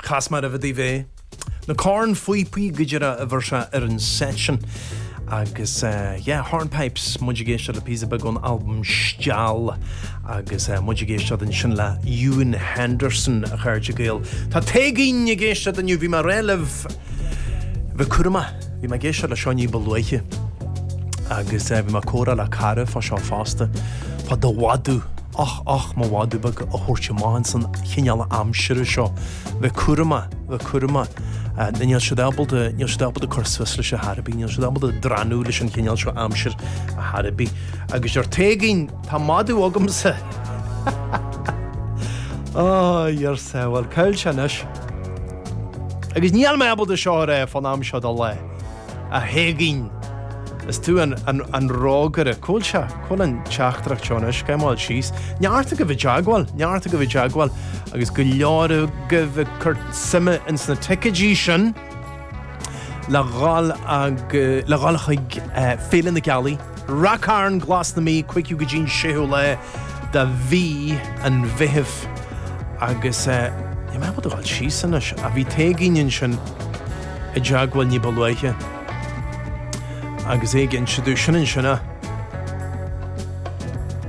Chas mé roimhe daoibh é. Na cornphíopaí go deireadh a bhfuair sé ar an set sin. Agus eh, yeah, Hornpipes, muid ag éisteacht le píosa beag ón albam Steall agus eh, muid ag éisteacht ansin le Ewen Henderson a chairde Gael. Tá Téigín ag éisteacht inniu, bhí mé ag rá libh. Bheith cúramach. Bhí mé ag éisteacht le seo ní ba luaithe agus bhí mé ag comhrá le cara fá seo fosta fá do mhadadh, och, och, mo mhadadh beag a thabhairt amach in san chineál aimsire seo. Bheith cúramach, bheith cúramach, níl siad ábalta, níl siad ábalta cur suas leis ar chor ar bith, níl siad ábalta drannadh leis an chineál seo aimsire ar chor ar bith. Agus arsa Téigín, tá madadh agamsa! Ó, arsa, bhuel, cá bhfuil sé anois. Agus níl mé ábalta seo a rá fán am seo de lá, a Théigín. Is tú an, an, an rógaire. Cá bhfuil seo, cá bhfuil an teachtaireacht seo anois, scimeáil síos. Neart agaibh i dteagmháil, neart agaibh i dteagmháil, agus go leor agaibh ag cur suime ins na ticeidí sin le dhul ag, le dhul chuig, eh, Féile na Gealaí. Ráth Chairn Glas na Mí cúigiú go dtí'n séú lá de mhí an Mheithimh agus níl mé ábalta a dhul síos anois ach bhí Téigín ansin i dteagmháil ní ba luaithe agus é ag inse domh sin ansin a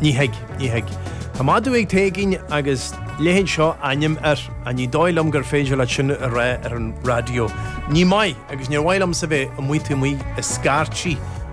Ní thig, ní thig. Tá madadh ag Téigín agus leithéid seo ainm air ach ní dóigh liom gur féidir leat sin a rá ar an raidió. Ní maith agus níor mhaith liomsa bheith amuigh taobh amuigh ag scairtí.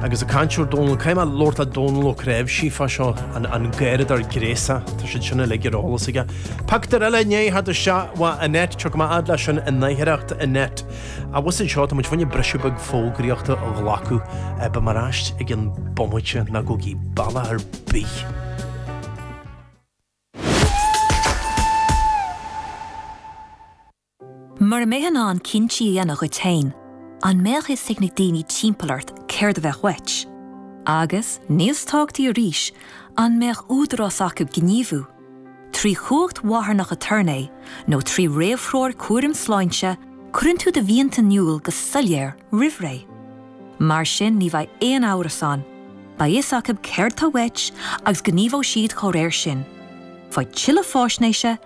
Agus ag caint ar Dónall, caithfidh mé labhairt le Dónall Ó Craobh sífeá seo an gairid ar gréasadh, tá siad sin uilig ar eolas aige. Pactar eile inné thar do sea, mhaith an net, seo go mba fhad leat sin i n-oidhreacht an net. Abhus anseo, tá muid fá choinne briseadh beag fógraíochta a ghlacadh, beidh mé ar ais i gceann bomaite ná gabhaigí bealach ar bith. Mura mbeifeá in ann cinntí a dhéanamh duit féin, an mbeadh fhios ag na daoine timpeall ort céard a bheadh uait? Agus, níos tábhachtaí arís, an mbeadh údarás acu gníomhú, trí chumhacht mharthanach aturnae nó trí réamhthreoir cúraim sláinte, cuireann tú do mhianta in iúl go soiléir roimh ré. Mar sin ní bheidh aon amhras ann, beidh fhios acu céard atá uait agus gníomhóidh siad dá réir sin. Faigh tuilleadh faisnéise